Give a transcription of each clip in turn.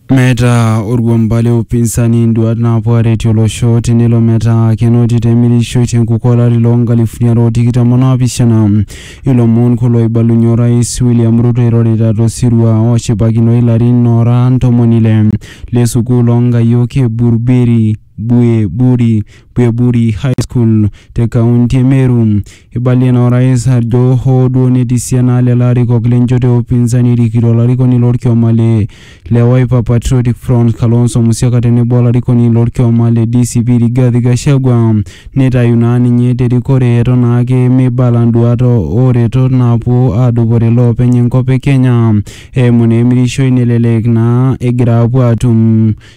Meeta orkuamba le upinsani nduat naapuo aaretie olosho tenelo metaa kenoti te mirishoi te nkukuo olari loo nkalifuni are o tikitam o naapishana. Ilomon kulo oibalunye orais William Ruto eirorita to sirua oshipakinoi ilarin oora ntomoni ile le sukuul oo nkayiok e Buruberi. Bweburi, Bweburi High School te kaunti e Meru. Eibalie naa orais ajo hoo duo netii esiana naa lelo arikok le nchoto e upinzani erikito olarikoni lorkioma le le Wiper Patriotic Front Kalonzo Musyoka tenebo olarikoni lorkioma le DCP Rigathi Gachagua neitayu naa ninye te rikore eton naa ake meibala nduaat o retot naapuo aadupore iloopeny enkop e Kenya eimu naa emirishoi nelelek naa egira aapuo aatum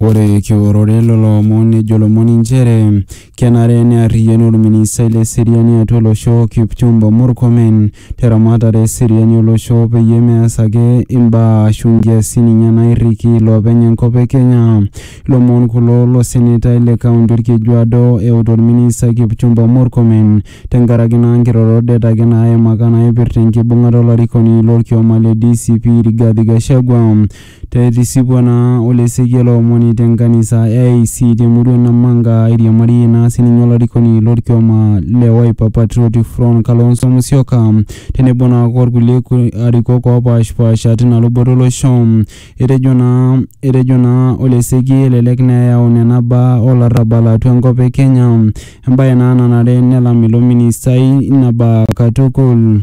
Ore kiworore lelo omon nejo lomon inchere kenare nearriyianu olministai le seriani atua olosho Kipchumba Murkomen teramatare e seriani olosho peyie meas ake imbaa aashu nkiasin ninye naairriki iloopeny enkop e Kenya. Ilomon kulo lo senetai le kaunti Olkejuado euta olministai Kipchumba Murkomen tenkaraki naa nkirorot det ake naaimaka naaipirta enkibung'ata olarikoni lo lkioma le DCP Rigathi Gachagua. Te etisipua naa ole Esekiel Omoni te nkanisa e AIC te murua e Namanga airiamarie naa sii ninye olarikoni lo lkioma le Wiper Patriotic Front Kalonzo Musyoka tenebo naa o lkulie arikok oopaashpaasha tina luboto o losho. Etejo naa etejo naa ole Esekiel elelek naa eyau nena baa o larrabal atua enkop e Kenya embae naa nanare nelam ilo ministai ina baa katukul.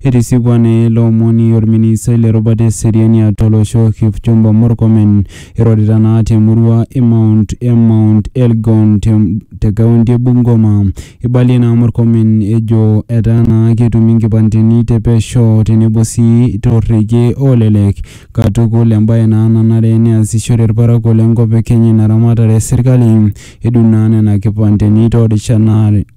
Etisipua naa ele omoni olministai le rubata e seriani atua olosho Kipchumba Murkomen eirorita naa te murua e Mount e Mount Elgon te te kaunti e Bungoma. Eibalie naa Murkomen ejo etaa naa ketumi nkipandeni te pesho tenebo sii to rrekie olelek katukul embae naa nanare neasishore ilparakuo le nkop e Kenya ina ramatare e serkali edung naa nena kipandeni too rishat naare.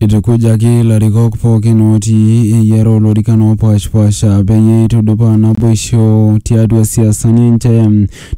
Eitukujaki larikok pookin ootii eyiare olorikan oopaashpaasha peyie eitudupaa naboisho tiatua siasani enche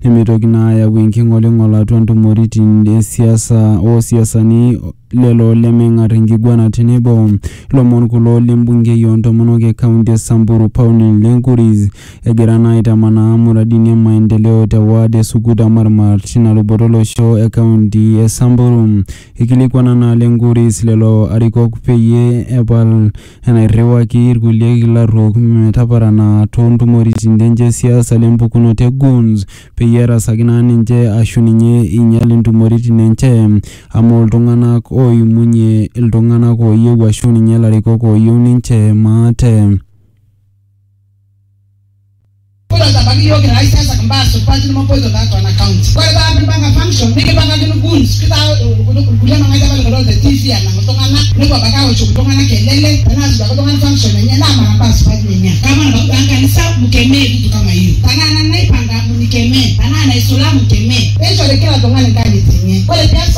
nemeitoki naa ayau enking'oling'ol atua ntumoritin e siasa o siasani lelo lemeng'ar enkiguana tenebo. Lomon kulo le mbungei oo ntomonok e kaunti e Samburu Pauline Lenkuris egira naa aitamanaa muradini e maendeleo te ward e Sukuta Marmar tina luboto olosho e kaunti e Samburu. Eikilikuana naa Lenkuris lelo arikok peyie epal enairriwaki ilkulie kilaruok metaparana too ntumoritin enche e siasa le mpukunoto e Goons peyie erasaki naa ninche aashu ninye einyal intumoritin enche amu iltung'ana ooimunye iltung'ana ooyieu aashu ninye ilarikok ooyieu ninche maate. Kulo sabaki yiok kira aisiasak mbaa supati nemopoito tiatua ena county. Ore paa kipanga function nikipangakino goons kitaa kulie mang'ati apa likidool te TV enang iltung'ana nepuo abaki aoshoki iltung'ana kelele tenaa suaki oltung'ani function enye naa mara mbaa supati nenia. Kama nabaki taa nkanisa mkemee vitu kama hiyo. Tenaa nanu naipanga mnikemee, tenaa naisula mkemee. Neishori kila tung'ani nkanyit enye. Ore pee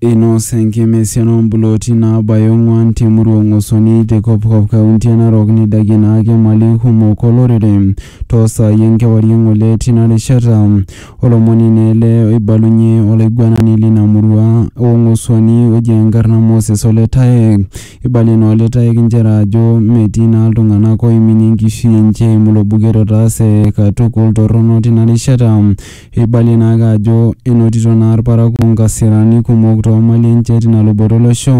Einos enkima esiana oo mpulooti naabaya ong'uan te murua o Ng'osoni te Kopkop kaunti e Narok neidakie ina ake imali kumok o lorere too saai e nkewarie ng'ole tina rishata. Olomoni naa ele oibalunye olaiguanani lina murua o Ng'osuani oji enkarna Moses Ole Taek. Eibalie naa Ole Taek inchere ajo metii naa iltung'ana ooiminie enkishui enche eimu ilo buket otaase katukul torrono tina rishata. Eibalie naake ajo enotito naa ilparakuo nkasirani kumok too mali enche tina luboto olosho.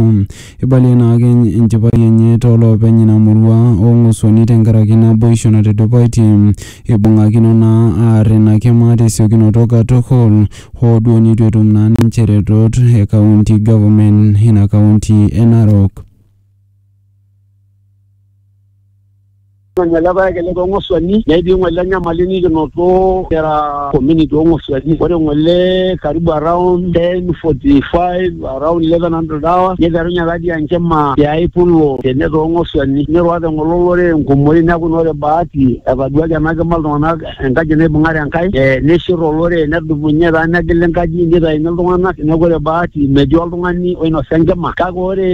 Eibalie naake enchipai enye too loopeny ina murua o ng'osuani tenkaraki naboisho natudupaitie. Eibung'akino naa aar ina kima te siokinoto katukul hoo duo neitu etum naa ninche retot e kaunti government ina kaunti e Narok. Ng'ole paek ele too ng'osuani netii ng'ole enyamali nikinoto kira community oo ng'osuani. Ore ng'ole karibu around 10:45 around 1100 hours niterunye tatii enkima tiai pulo tene too ng'osuani. Nirura te ng'ole olorere enkumoi neeku naa ore bahati etaduaki ena kima iltung'ana enkaji naibung'are Enkai eh, nishir olorere nedumunye taa negil enkaji nitaini iltung'anak neeku ore bahati metii oltung'ani oinosa enkima kake ore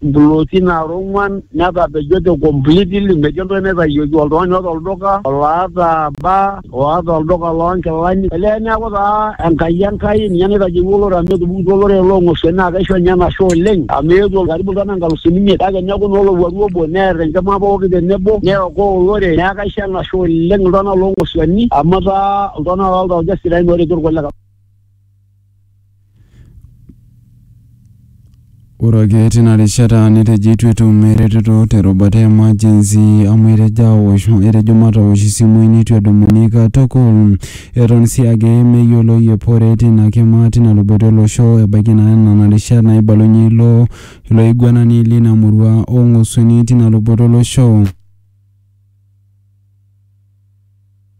implooti naara ong'uan netapejote completely metii entoki naitayioki oltung'ani oota olduka oloata baa oata olduka loonkilani olee neeku taa Enkai Enkai ninye naitayieua olorere amu etupukutuo olorere loong'osuani naa kaisho ninye enashe oleng amu eetuo karibu iltung'anak inkalusuni imiet kake neeku naa olowuaru obo neer enkima pooki tenebo neokoo olorere neeku kaisho enashe Etashe oleng iltung'anak loo Nkosuani amu etaa iltung'anak loo ltauja sidain ooretu irkulikae. Ore ake tina rishata netejo eitu etum eretoto te rubata e emergency amu etejo aosh etejo matosh isimui neitu edumuni katukul. Eton sii ake meyioloi epore tina kima tina luboto e losho ebaiki naa nena rishat naibalunye ilo ilo aiguanani lina murua oo Ng'osuani tina luboto o losho.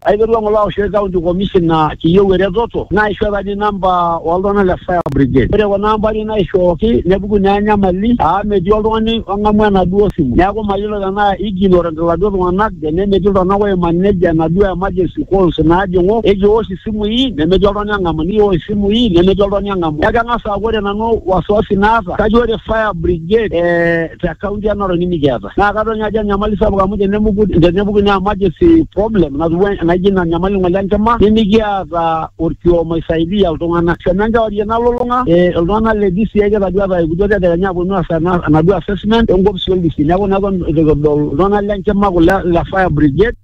Aiterua ng'ole aoshoki county commissioner kiyieu eretoto naishoo apa ninye namba oltung'anak le fire brigade. Ore kuna ambari naishooki nepuku naa enyamali aa metii oltung'ani ong'amu enaduo simu. Neeku mayiolo tenaa ignorant iladuo tung'anak tene metii iltung'anak oi manage enaduo emergency calls naajing'u. Ekiwosh isimui nemetii oltung'ani ong'amu nikiwosh isimui nemetii oltung'ani ong'amu. Neeku keng'as aaku ore nanu wasiwasi naata kajo ore fire brigade ee te county e Narok nimikiata. Naa kadol ninye ajo enyamali sapuk amu tenemuku tenepuku ina emergency problem natiu en- naijo ina nyamali ng'ole enkima nimikiata orkioma oisaidia iltung'anak. Kenya enkewarie nalulung'a eh iltung'anak le DCI kitadua etaa eikutuo tedekenya aponu aas ena enaduo assessment enkopisi oldisi. Neeku naa eton itu kidol iltung'anak le nkima kulo le fire brigade.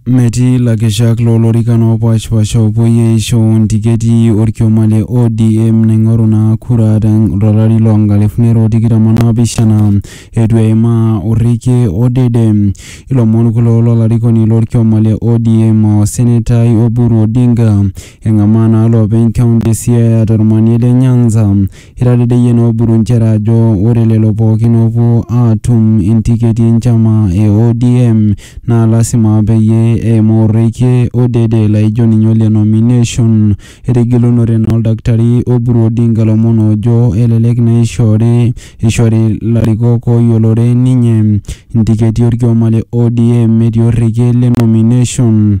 Metii lakeshak loo lorikan oopaashipaasha oopuoi aisho ntiketi olkioma le ODM naing'oru naa kura to lari loo nkalifuni are o tikitam o naapishana eitu eimaa orekie odede. Ilomon kulo lo larikoni lo lkioma le ODM o senetai Oburu Odinga eng'amaa naa loopeny kaunti e Siaya to lmanie le Nyanza Eitadedeyie noo Oburu nchere ajo ore lelo pooki oopuo aatum intiketi e nchama e ODM naa lasima peyie eimaa orekie odede laijo ninye ole nomination. Etigilunore naa Oldakitari Oburu Odinga lomon oojo elelek naa eishoori eishori larikok ooyiolore ninye intiketi olkioma le ODM metii orekie le nomination.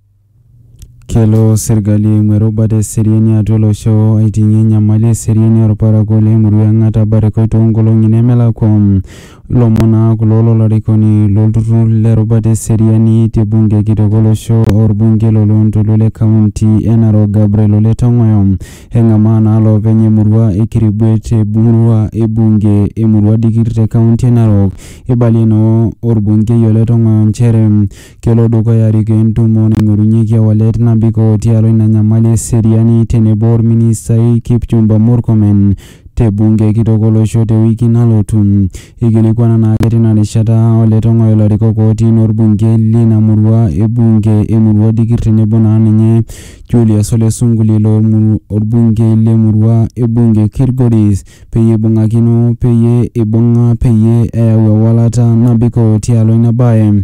Kelo serkali eimu erubata e seriani atua olosho aiting'ie enyamali e seriani olparakuo le murua e Ng'ata Barikoi too nkolong'i nemelakua. Ilomon naa kulo lo larikoni lo lturrur le rubata e seriani te bunge kitok o losho o lbungei lo loontoluo le kaunti e Narok Gabriel Ole Tong'oyo. Eng'amaa naa loopeny e murua e Kirigwe te murua e bunge e murua Dikir te kaunti e Narok. Eibalie naa olbungei Ole Tong'oyo nchere Kelo dukuya arikoo entumo naing'orunyeki ewalet nabikoo tialo ina nyamali e seriani tenebo olministai Kipchumba Murkomen te bunge kitok olosho te wiki nalotu. Eikilikuana naake tina rishata o Letong'oyo ilarikok ootii enaa olbungei lina murua e bunge e Murua Dikir tenebo naa ninye Julius Ole Sunkuli ilo olbungei le murua e bunge e Kilgoris peyie eibung'akino peyie eibung'a peyie eyau ewalata nabikoo tialo ina bae.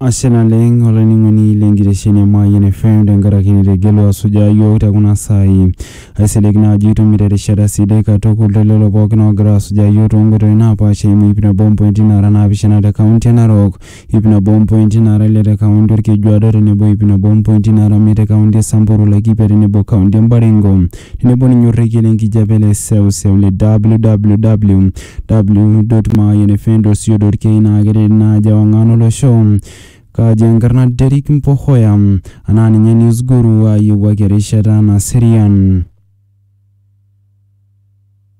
Ashe naleng olainining'oni le nkitesheni e Mayian FM tenkaraki nitegelua asujaa yiok te kuna saai. Aisilig naa ajo itumito erishata sidai katukul te lelo pookin oogira asujaa yiok too nkoitoi naapaasha eimu ip nabo ompointi naara naapishana te kaunti e Narok, ip nabo ompointi naara ile te kaunti Olkejuado tenebo ip nabo ompointi naara imiet te kaunti e Samburu, Laikipia tenebo kaunti e Baringo. Tenebo ninye orrekie le nkijape le seuseu le www.mayianfm.co.ke naa keret ina aji ewang'an olosho. Kaji enkarna Derrick Mpohoya anaa ninye News Guru ayiewuaki erishata naserian.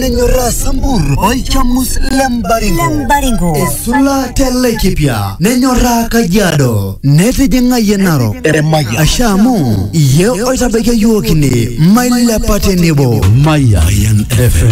nenyorraa sambur olchamus le mbaringo Lembaringo. esula te laikipia nenyorraa kajiado netijing'ayie narok Eremaya. asha amu iye oitabaiki yiook ine mailepa tenebo Mayan FM.